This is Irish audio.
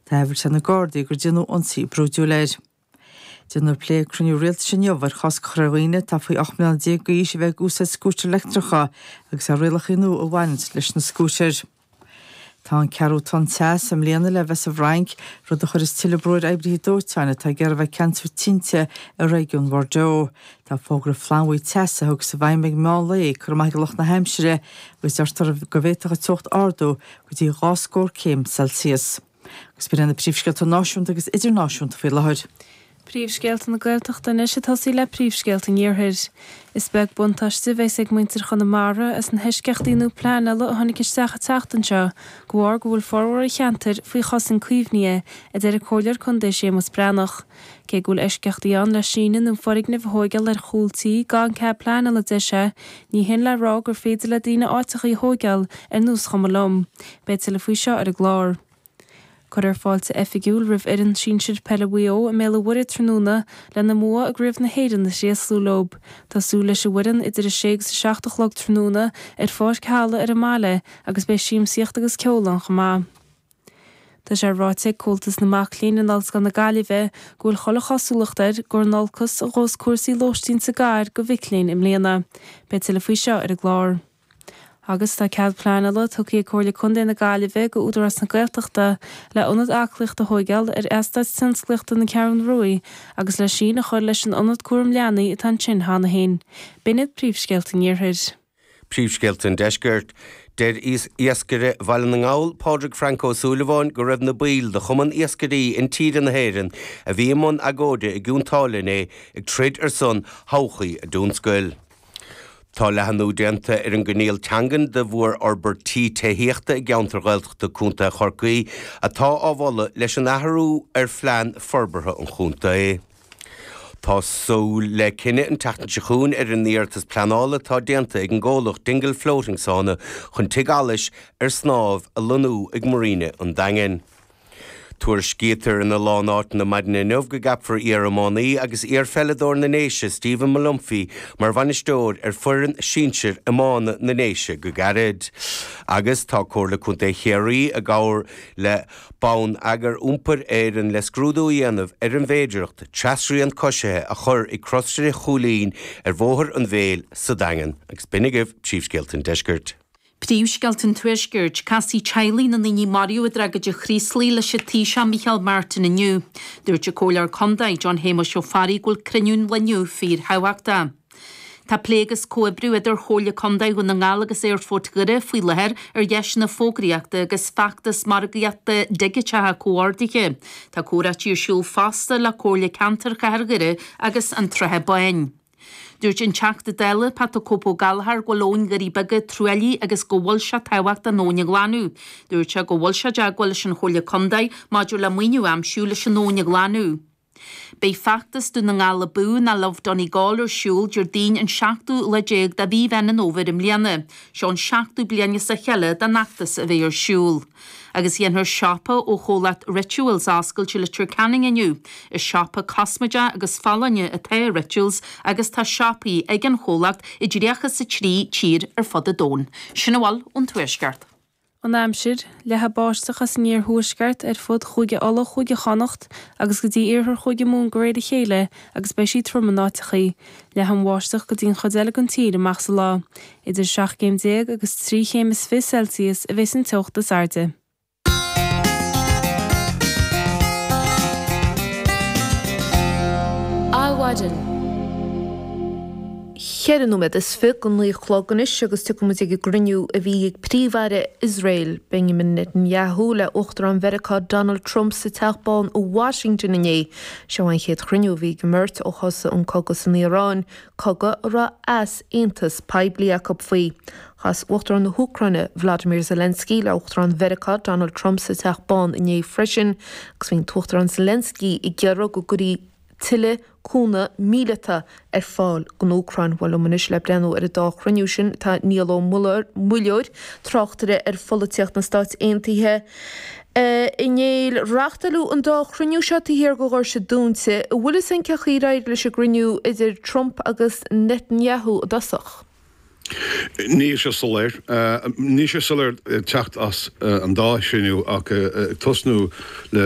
Tá amhras ar na Gardaí gur déanadh ionsaí brúidiúil air. Déanfar plé ag cruinniú rialtais inniu ar chosc a chur ar dhaoine atá faoi 18 mbliana d'aois a bheith ag úsáid scútair leictreacha agus ar rialachaí nua a bhaineanns leis na scútair. Tá an ceathrú tonn teas i mbliana le bheith sa bhFrainc, rud a chuirfeas tuilleadh brú ar oibrithe dóiteáin atá ag iarraidh a bheith ag ceansú tinte i réigiún Bhordeaux. Tá fógra flannbhuí teasa a thiocfas i bhfeidhm ag meán lae curtha amach ag lucht na haimsire agus deirtear go bhféadfadh an teocht ardú go dtí dhá scór céim Celsius. Agus b'in iad na príomhscéalta náisiúnta agus idirnáisiúnta faoi láthair. Príomhscéalta na Gaeltachta anois ag tosaí le príomhscéalta an iarthair. Is beag buntáiste a bheas ag muintir Chonamara as na heisceachtaí nua pleanála a tháinig isteach an tseachtain seo de bharr go bhfuil formhór an cheantair faoi chosaint caomhnaithe, a deir an comhairleoir contae Séamus Breathnach. Cé go bhfuil eisceachtaí ann le síneadh nó foirgnimh a thóigeáil ar chúl tí gan cead pleanála a deir sé, ní hin le rá gur féidir le daoine áiteacha a thóigeáil ar nós chuma liom. Beidh tuilleadh faoi seo ar an gclár. Cuirfear fáilte oifigiúil roimh fhoireann sinsir peile Mhaigh Eo i mBéal an Mhuirthead tráthnóna lena mbua i gCraobh na hÉireann a thréaslú leo. Tá súil leis an bhfoireann idir a sé agus a seacht a chlog tráthnóna ar pháirc Halla ar an mbaile agus beidh siamsaíocht agus ceol ann chomh maith. Tá sé ráite ag Comhaltas na Mac Léinn in Ollscoil na Gaillimhe go bhfuil chuile chosúlacht air gur in olcas a ghabhfas cúrsaí lóistín sa gcathair go mhic léinn i mbliana. Beidh tuilleadh faoi seo ar an gclár. Agus tá cead pleanála tugtha ag Comhairle Contae na Gaillimhe go Údarás na Gaeltachta le ionad aclaíochta a thóigeáil ar Eastát Tionsclaíochta na Ceathrún Ruaidh agus le síneadh a chur leis an ionad cúraim leanaí atá ansin cheana féin. B'in iad príomhscéalta an Iarthair. Príomhscéalta an Deiscirt. Deir iascaire Bhaile na nGall, Pádraig Frank Ó Súilleabháin, go raibh na baill de Chumann Iascairí Intíre na hÉireann a bhí i mbun agóide i gCionn tSáile inné ag troid ar son thodhchaí a dtionscail. Tá leathnú déanta ar an gcoinníoll teangan do mhórfhorbairtí tithíochta i gceantair Ghaeltachta Co. Chorcaí atá á mholadh leis an athrú ar phlean forbartha an chontae. Tá súil le cinneadh an tseachtain seo chugainn ar an iarratas pleanála atá déanta ag an gcomhlacht Dingle Floating Sauna chun tigh allais ar snámh a lonnú ag Marina an Daingin. Tuairiscítear ina lán áiteanna maidin inniu go gceapfar iar-iománaí agus iar-pheileadóir na nDéise Stephen Molumphy mar bhainisteoir ar foireann sinsir iomána na nDéise go gairid agus tá Comhairle Contae Chiarraí i gcomhar le Bonneagar Iompair Éireann le scrúdú a dhéanamh ar an bhféidireacht trasrian coisithe a chur ag Crosaire Chúilín ar Bhóthar an Mhéil sa Daingean. Agus b'in agaibh príomhscéalta an Deiscirt. Príomhscéalta an Tuaiscirt, Casfaidh teaghlaigh na ndaoine a maraíodh i dtragóid an Chraoslaigh leis an Taoiseach Micheál Martin inniu. Dúirt an Comhairleoir Contae, John Shéamuis Ó Fearraigh go bhfuil cruinniú an lae inniu fíorthábhachtach. Tá plé agus comhoibriú idir Chomhairle Contae Dhún na nGall agus Aerfort Dhoire faoi láthair ar dheiseanna fógraíochta agus feachtas margaíochta digiteacha comhordaithe. Tá comhráití ar siúl fosta le Comhairle Ceantair Chathair Dhoire agus an tSratha Báin. Dúirt an Teachta Dála Pat 'The Cope' Gallagher go bhfuil abhainn Doirí Beaga truaillithe agus go bhfuil sé tábhachtach an abhainn a ghlanadh. Dúirt sé go bhfuil sé i dteagmháil leis an Chomhairle Contae maidir le maoiniú a aimsiú leis an abhainn a ghlanadh. Beidh Feachtas Dún na nGall Abú nó Love Donegal ar siúl Déardaoin an 7ú lá déag de mhí Mheán an Fhómhair i mbliana. Seo an seachtú bliain as a chéile don fheachtas a bheith ar siúl. Agus déanfar siopa ó chomhlacht Rituals a oscailt i Leitir Ceanainn inniu. Is siopa cosmaide agus folláine atá i Rituals agus tá siopaí ag an chomhlacht i dtríocha is a trí tír ar fud an domhain. Sin a bhfuil ón Tuaisceart. an aimsir, leathfaidh báisteach as an iarthuaisceart ar fud Chúige Uladh Chúige Chonnacht agus go dtí iarthar Chúige Mumhan de réir a chéile agus beidh sí trom in áiteachaí, leathfaidh an bháisteach go dtí an chuid eile den tír amach sa lá. Idir seacht gcéim déag agus trí chéim is fiche Celsius a bheidh sa teocht is airde. Adhmhaidin. Ceithre nóiméad is fiche go naoi a chlog anois agus gabhfaidh muid ag an gcruinniú a bhí ag Príomh-Aire Iosrael, Benjamin Netanyahu le Uachtarán Mheiriceá Donald Trump sa Teach Bán i Washington inné. Seo an chéad chruinniú a bhí ag an mbeirt ó thosaigh an cogadh san Iaráin, cogadh a raibh easaontas poiblí acu faoi. Chas Uachtarán na hÚcráine Volodymyr Zelensky le Uachtarán Mheiriceá Donald Trump sa Teach Bán inné freisin agus bhí an tUachtarán Zelensky ag iarraidh go gcuirfí tuilleadh cúnamh míleata ar fáil don Úcráin. Bhuel, liom anois le breathnú ar an dá chruinniú sin tá Niall Ó Muilleoir, tráchtaire ar pholaitíocht na Stát Aontaithe. A Néill, reáchtáladh an dá chruinniú seo taobh thiar de dhoirse dúnta. An bhfuil a fhios againn cén chaoi ar éirigh leis an gcruinniú idir Trump agus Netanyahu i dtosach? Níl sé soiléir. Níl sé soiléir ag teacht as an dá chruinniú ach ag tosnú le.